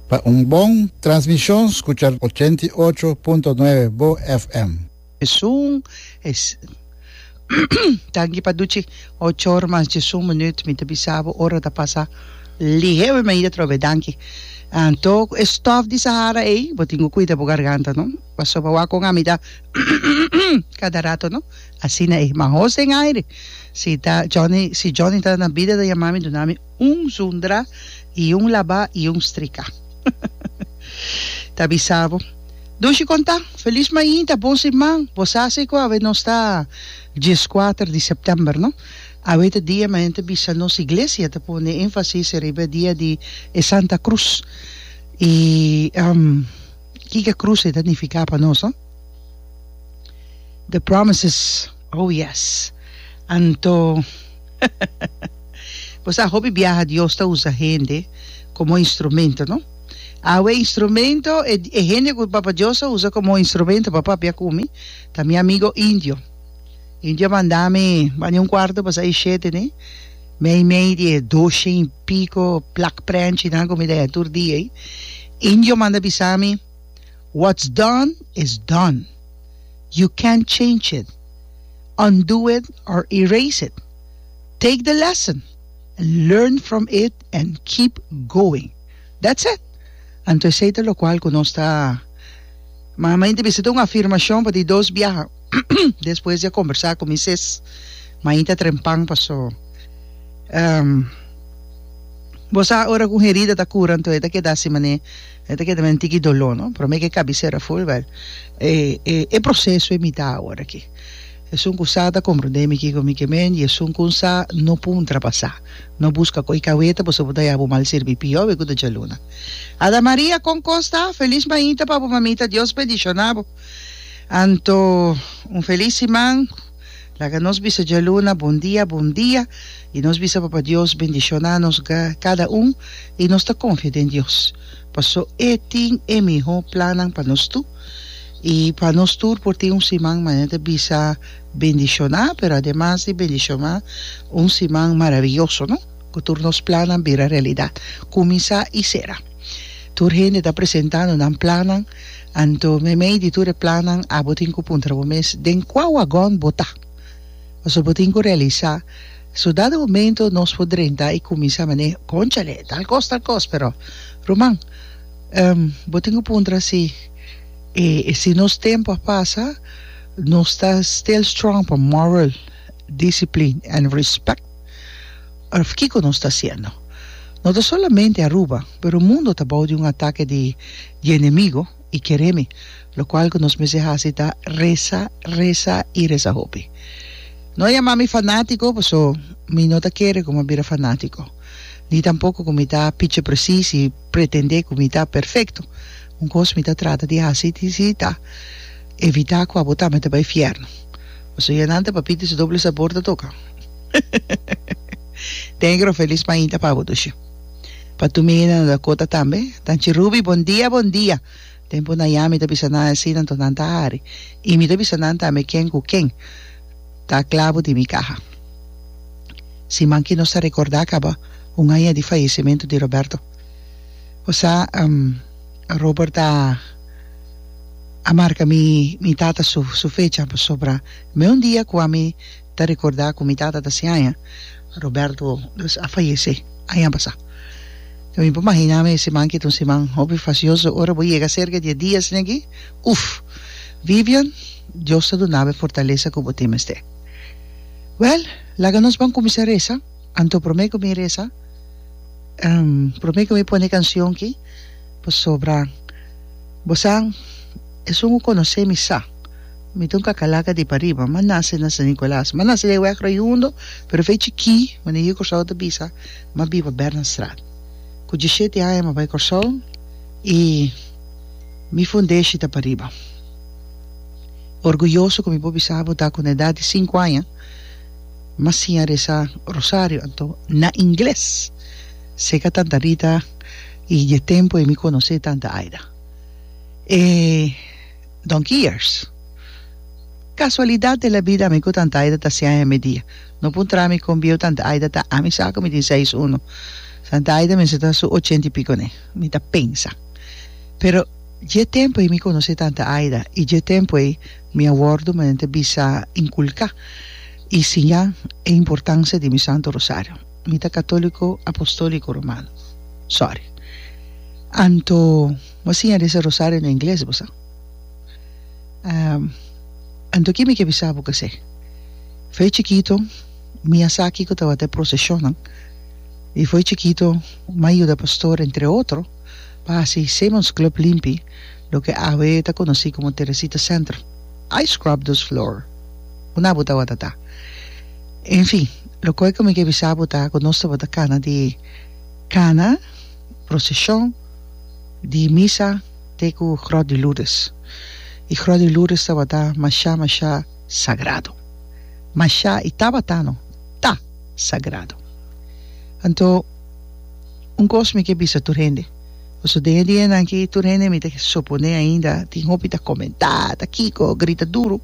Pa un bon transmishon skucha ochenta i ocho punto nuebe bo FM. Djesun es Tanki pa duchi ocho or mas djesun minut mi ta bisa bo ora ta pasa lihe wi mi a hida trobe danki anto ku e stof di sahara ei bo tin ku kuida bo garganta no paso bo a kon ami ta kada rato no asina ei ma hos den aire si ta Johnny si Johnny ta na bida ta yama mi duna mi Un zundra y un laba y un strica. Ta bisa bo. Dushi conta, Feliz mainta bos y man. Bo sa si cu awe nos ta diescuater di september, no? Awe ta dia ma henter bisa nos iglesia ta pone enfasis riba e dia di e Santa Cruz. Y kiko e cruz e ta nifica pa nos, no? The promises. Oh yes! Anto bo sa hopi biaha Dios ta usa hende komo instrumento, no? Awe instrumento, e hende ku Papa Dios a usa komo instrumento pa papia ku mi ta mi amigo Indio. Indio a manda mi bani un kuarto pa sa e shete, ne? Meimei di e doshe i piko plakprènchi nan ku mi ta hei tur dia ei. Indio manda bisa mi. What's done is done. You can't change it, undo it or erase it. Take the lesson, learn from it and keep going. That's it. Anto esei ta lokual ku nos ta Ma mi ta bisita un afirmashon pa di dos biaha despues di a kombersá ku mi sis. Mi ta trempan paso bo sa ora ku un herida ta kura anto e ta keda si manera E ta keda men tiki doló no pero mi ke kabisera ful wèl e e proseso e mitá awor aki esun ku sa ta komprendé mi kiko mi ke men i esun kon sa no puntra pa sa no buska koi kaweta boso bo ta ya bo mal sirbi pió we ku ta djaluna Ada Maria kon kos ta felis mainta pa bo mamita Dios bendishoná bo anto un felis siman. Laga nos bisa djaluna bon dia, bon dia, i nos bisa Papa Dios bendishona nos kada un, i nos ta konfia den Dios, pasó E tin e mihó plannan pa nos tur, i pa nos tur por tin un siman manera ta bisa bendishoná, pero ademas di bendishoná, un siman maraviyoso, no? Ku tur nos plannan bira realidat, kuminsá i sera. Tur hende ta presentando nan plannan. Anto meimei di tur e plannan abo tin ku puntra bo mes den kua wagòn bo ta. Pasobra bo tin ku realisá so dado momento nos por drenta i kuminsá man'é konchale tal kos tal kos pero ruman em bo tin ku puntra si e si nos tempu a pasa nos ta still strong pa moral, discipline and respect. Parf kiko nos ta hasiendo? No ta solamente Aruba, pero mundo ta bou di un atake di di enemigo y kere mi, lokual ku nos mester hasi ta resa, resa y resa hopi. No yama mi fanatiko, paso mi no ta kere ku mi a bira fanatiko, ni tampoko ku mi ta pichi presis y pretende ku mi ta perfekto. Un kos mi ta trata di hasi si ta evita ku abo tambe ta bai fierno, paso ya nan ta papita y su doble sabor ta toka. Negro feliz mainta pa bo dushi pa tu mingui nan Dakota tambe tanchi Ruby bon dia bon dia tempo na ya mi ta bisa nan asi nan tornan ta hari y mi ta bisa nan tambe ken cu ken ta clavo di mi caha si manki nos ta recorda caba un aña di fallecimento di Roberto o sa Robert a a marca mi mi tata su su fecha pasobra mi un dia cu ami ta recordá cu mi tata ta si aña. Roberto dus a fayecé aña pasá. Ta bin pa mahiná mi e siman ki ta un siman hopi facioso. Ora bo yega cerca di e dia asina aki, uf! Vivian, Dios ta duna bo e fortalesa cu bo tin mester. Wèl, laga nos ban cuminsa reza. Anto promé cu mi reza, promé cu mi pone e cancion ki, pasobra bo sa, esun cu conocé mi sa. Mi ta un kakalaga di pariba. Mi a nase na San Nicolas. Mi a nase den wèk Raiundo, pero fei chikí, wen e hir Kòrsou ta bisa, mi a biba Bernardstraat. Ku dishete aña mi a bai Kòrsou i mi fundeshi ta pariba. Orguyoso ku mi por bisa bo ta ku na edat di sinku aña mi a siña resa rosario, anto na ingles. Seka tanta Rita i dje tempu ei mi konosé tanta Aida. E. donkey years. Casualidad de la vida ami cu tanta Aida ta seis aña media. No por tra mi con bieu tanta Aida ta ami sa cu mi tin seis uno. Tanta Aida mester ta su ochenta y pico ne, mi ta pensa. Pero dje tempo ei mi conoce tanta Aida y dje tempo ei mi a wordo manera ta bisa inculca y siña e importancia di mi Santo Rosario. Mi ta catolico apostolico romano. Sorry. Anto. Bo siña di ese rosario na ingles bo sa? Anto ki mi ke bisa bo kesé. Fo'i chikito mi a sa kiko tabata e proseshonnan i fo'i chikito mi a yuda pastor entre otro pa hasi Simmons Club limpi loke awe ta konosí komo Teresita Centrum. I scrubbed those floor. Ku na bo tabata ta? Enfin, loke ku mi ke bisa bo ta ku nos tabata kana di kana. prosesion di misa te ku Grot di Lourdes. E Grot di Lourdes tabata mashá mashá sagrado. Mashá i tabata no, ta sagrado. Anto un kos mi ke bisa tur hende, pasobra den e dianan aki tur hende mi ta soponé ainda tin hopi ta komentá, ta kiko, grita duru.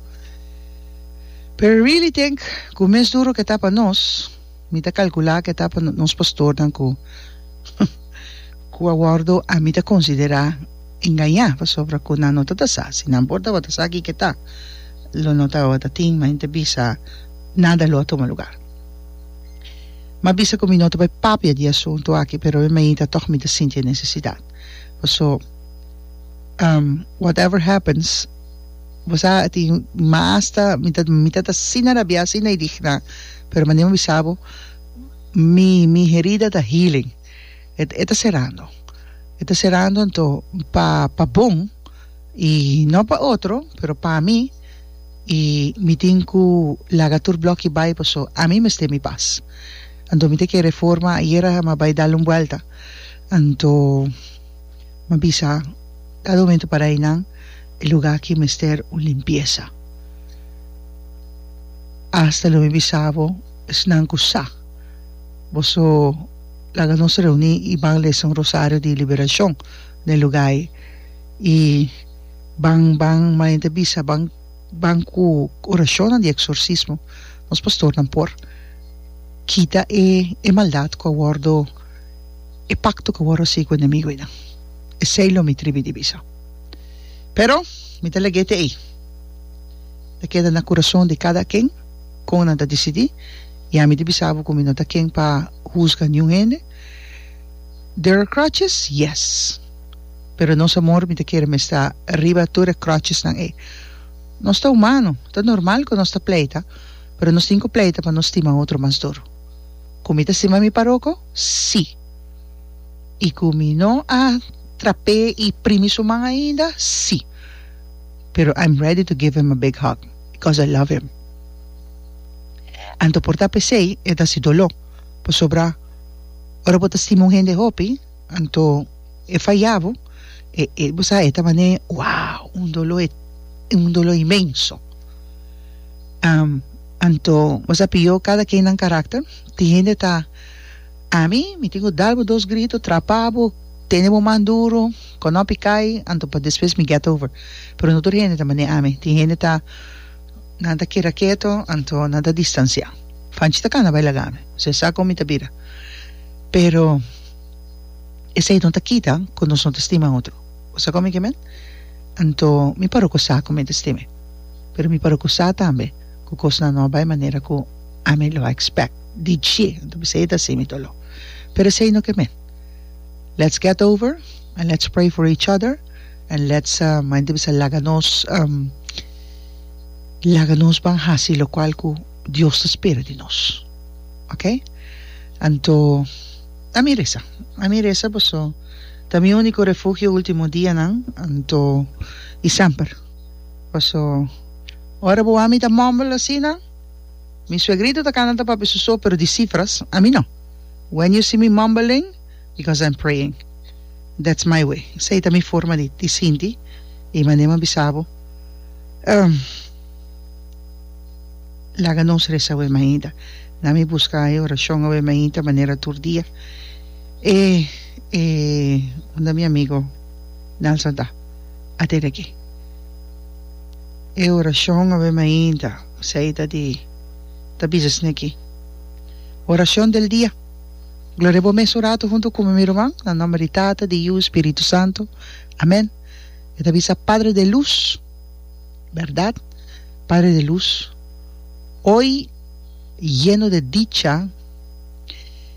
Pero I really think ku mes duru ke ta pa nos. Mi ta calcula cu e ta pa nos pastornan cu cu a wordo, a mi ta considera, engaña, pasobra cu nan no ta ta sa. Si nan por tabata sa kico e ta, lo no tabata tin mente bisa, nada lo a tuma lugar. M'a bisa cu mi no ta bay papia di e asunto aki, pero e mainta tog mi ta sinti e necesidad. Paso, um, whatever happens, bo sa tin, mi m'a asta, mi ta, mi ta ta asina rabia, asina indigna. Pero manera mi a bisa bo, mi mi herida ta healing, e e ta serando, e ta serando anto pa pa bon i no pa otro pero pa mi i mi tin ku laga tur blòkkie bai paso ami mester mi pas. Anto mi ta kere forma ayera mi a bai dal un buelta anto. m'a bisa kada un momentu pa reinan e lugá aki mester un limpiesa. Asta lo mi bisa bo esnan ku sa boso laga nos reuní i ban lesa un rosario di liberashon na e lugá ei i ban ban manen ta bisa ban ban ku orashonnan di eksorsismo nos pastornan por kita e maldat ku a wòrdu E pakto ku wòrdu hasi ku enemigunan, esei lo mi tribi di bisa. Pero, mi ta lag'é te ei. Ta keda na kurason di kada ken kon nan ta disidí, i ami di bisa bo ku mi no ta ken pa husga niun hende. Der are crutches? Yes! Pero nos amor mi ta kere mester riba tur e kròtjesnan ei. Nos ta humano, ta normal ku nos ta pleita, pero nos tin ku pleita pa no stima otro mas duru. Ku mi ta stima mi paroko? Sí. I ku mi no a trap'é i primi su man ainda? Sí. Pero I'm ready to give him a big hug because I love him. Anto por ta p'esei e ta hasi doló, pasobra ora bo ta stima un hende hopi anto e fayá bo, e e bo sa e ta man'é wow un doló e un doló inmenso. Anto bo sa p'yo kada kennan karakter Tin hende ta, Ami, mi tin ku dal bo dos grito, trapá bo, tene bo man duru, konòpi kai, anto pa despues mi get over. Pero no tur hende ta manera ami. Tin hende ta, Nan ta keda keto, anto nan ta distansiá. Fanchita kanda bai laga mi. Ose e sa kon mi ta bira. Pero esei no ta kita ku nos no ta stima otro. Bo sa kon mi ke men? Anto mi paró ku sa ku mi ta stima e. Pero mi paró ku sa tambe. ku kosnan no a bai manera ku ami lo a expect di dje anto bisei e ta así mi dolo pero esei no ke men let's get over and let's pray for each other and let's mayen ta bisa laga nos laga nos ban hasi lokual ku Dios ta spera di nos okay anto ami resa ami resa paso ta mi uniko refugio ultimo dianan anto i semper. Paso, ora bo wak mi ta mumble asina, mi suegrito ta canta ta papi su so, pero di cifras, ami no. When you see me mumbling, because I'm praying. That's my way. Esei ta mi forma di di sinti y manera mi a bisa bo, um, laga nos resa awe mainta, na mi busca e oracion awe mainta manera tur dia. E, e, unda mi amigo Nelson ta? a tene ki. E orashon a bem ainda, ku sa i ta di ta bisa esne aki, Orashon del dia, Gloria bo mes un ratu huntu kume mi ruman, na nomber di Tata, di Yu, Spiritu Santu, amen. E ta bisa, Padre de lus, bèrdat, Padre de lus, hoy yeno de dicha,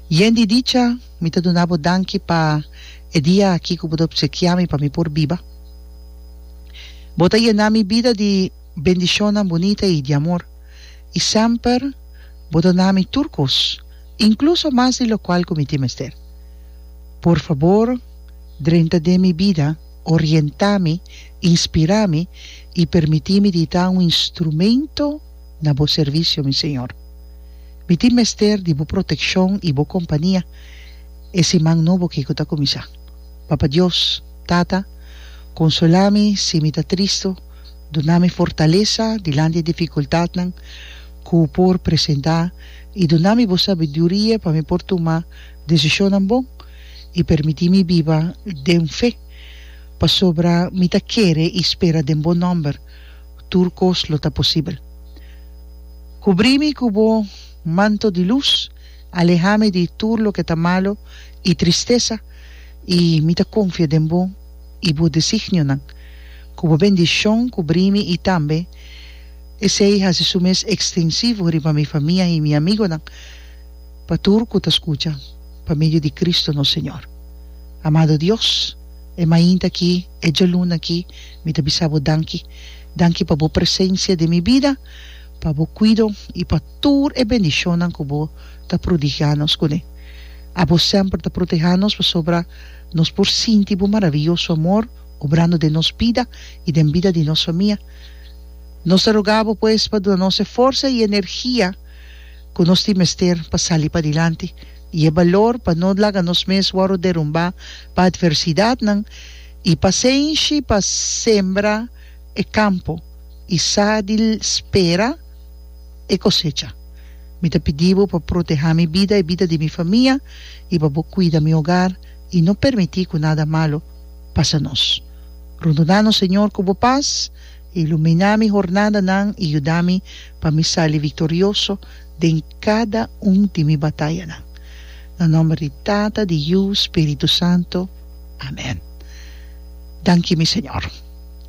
yen di dicha. Mi ta duna bo danki pa e dia aki ku bo ta opsekiá mi pa mi por biba. Bo ta yená mi bida di bendishonnan bunita i di amor, i semper bo ta na mi tur kos, inkluso mas di lokual ku mi tin mester. Por fabor, drenta den mi bida, orientá mi, inspirá mi i permití mi di ta un instrumento, na bo servisio, mi señor. Mi tin mester di bo protekshon i bo kompania e siman nobo akí ku ta kuminsá. Papa Dios, Tata, konsolá mi si mi ta tristu, duna mi fortalesa dilanti e difikultatnan ku por presentá i duna mi bo sabiduria pa mi por tuma desishonnan bon i permití mi biba den fe, pasobra mi ta kere i spera den bo nòmber. tur kos lo ta posibel. Kubrí mi ku bo manto di lus, alehá mi di tur loke ta malu i tristesa, i mi ta konfia den bo i bo designionan. Ku bo bendishon kubrí mi i tambe Esei hasi su mes ekstensivo riba mi famia i mi amigonan, pa tur ku ta skucha, pa medio di Kristu nos Señor. Amado Dios, e mainta akí, E djaluna aki mi ta bisa bo danki. Danki pa bo presensia den mi bida, pa bo kuido i pa tur e bendishonnan ku bo ta prodigá nos kuné. Abo semper ta protehá nos pasobra nos por sinti bo maravioso amor obrando den nos bida i den bida di nos famia. Nos ta rogá bo pues pa duna nos e forsa i energia ku nos tin mester pa sali padilanti. i e balor pa no laga nos mes wòrdu derumbá pa atversidatnan, i pasenshi pa sembra e kampo i sa di spera e kosecha. Mi ta pidi bo pa protehá mi bida i bida di mi famia, i pa bo kuida mi ogar i no permití ku nada malu pasa nos. Runduná nos Señor ku bo pas, iluminá mi hornadanan i yuda mi pa mi sali viktorioso den cada un di mi batayanan. Na nomber di Tata, di Yu, Spiritu Santo. Amen. Danki mi Señor.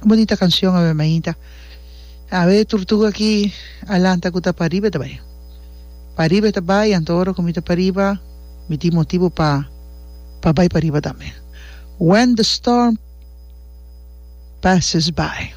Un bonita cancion awe mainta. Awe Turtuga aki a lanta cu ta pariba e ta bay. Pariba e ta bay anto ora cu mi ta pariba mi tin motibu pa pa bay pariba tambe. When the storm passes by.